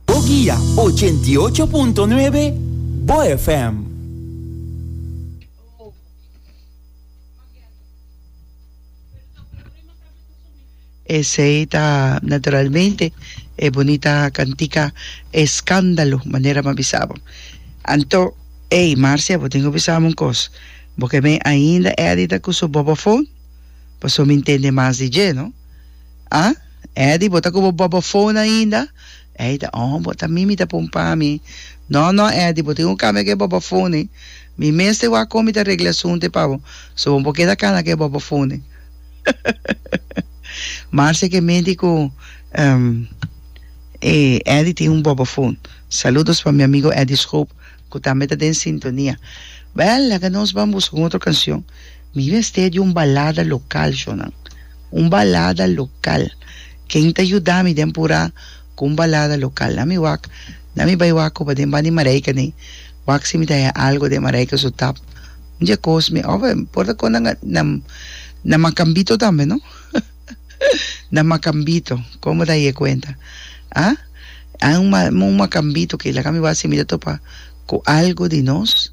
Bo guia ochenta i ocho punto nuebe bo FM. Esei ta naturalmente e bunita cantica Escándalo, manera bo a bisa bo. Anto, ey Marcia, bo tin cu bisa mi un cos, bo ke me ainda edita cu su bobophone? Pasobra mi ntende mas di dje, no? A, Eddy, bo ta ku bo bòbò fon ainda? Eida, Ohon, bo ta mi mi ta pon pa mi. Nò, nò, Eddy, bo tin ku kambia ke bòbò fonnen. Mi mes ta wak kon mi ta regle asuntu e pa bo, so bo no por keda kana ke bòbò fonnen. Marcia ke menti ku e Eddy tin un bòbò fon. Saludos pa mi amigo Eddy Schoop. cu tambe ta den sintonia. Bel, laga nos ban busca un otro cancion. Mi mester di un balada local, Jonan. Un balada local. Ken ta yuda mi den Pura cu un balada local? Na mi wak, na mi bay wak oba den Bani Marijke nee. Wak si mi ta haya algo den Marijke su tap. Un dia cos mi, of, mi por ta con nan, nan, nan Macambito tambe, no? Na Macambito, como ta aye cuenta? Ha? Hay un un Macambito que laga mi wak si mi ta topa cu algo di nos.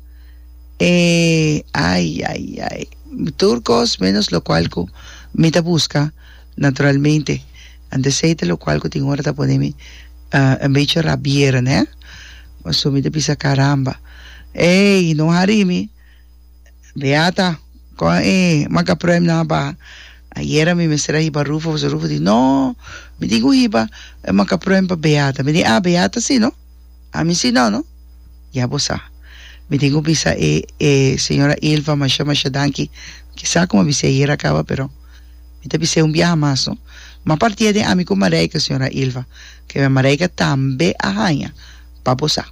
E, ay, ay, ay, tur cos menos lo cual cu mi ta busca, naturalmente, anto esey ta lo cual cu tin ora ta pone mi un bechi rabiera, neh? Pasobra mi ta bisa, caramba, ey, no hari mi. Beata, Kon e makaprèmnan a ba? Ayera mi mester a hiba Rufo, pasobra Rufo di, No, mi tin ku hiba e makaprèm pa Beata. Mi di, Ah, Beata si no, ami si no, no. Ya bo sa. Mi tin ku bisa e e señora Ilva masha masha danki. Ki sa kuma bis'é ayera a kaba, pero mi ta bis'é un biaha mas, no. M'a partia den ami ku Marijke, señora Ilva, ke Marijke tambe a haña. pa bo sa.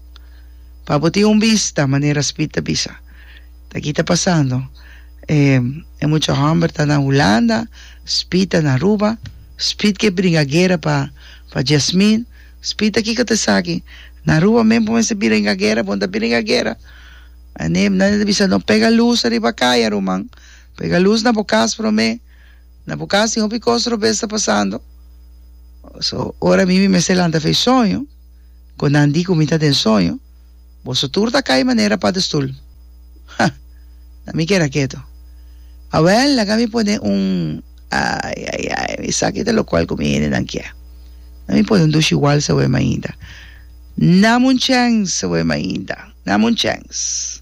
Pa bo tin un bista, manera Speed ta bisa. Ta ki ta pasando. E, e mucha homber ta na Hulanda, Speed ta na Aruba. Speed ke bringa guera pa, pa Jasmine. Speed ta kiko ta esaki? Na Aruba men bo mester bringa guera, bon ta bringa guera. An'e, nan e ta bisa, no pega luz ariba kaya, ruman. Pega luz na bo kas promé. Na bo kas tin hopi kos robes ta pasando. So, ora mi mi mester lanta fe soño. cu nan di cu mi ta den soño, boso tur ta cay manera padestol. Ha! Na mi keda keto. Awel, laga mi pone un, ay, ay, ay, esaki ta locual cu mi hendenan kier. Na mi pone un dushi wals aweh mainda. Nam un chens aweh mainda. Nam un chens.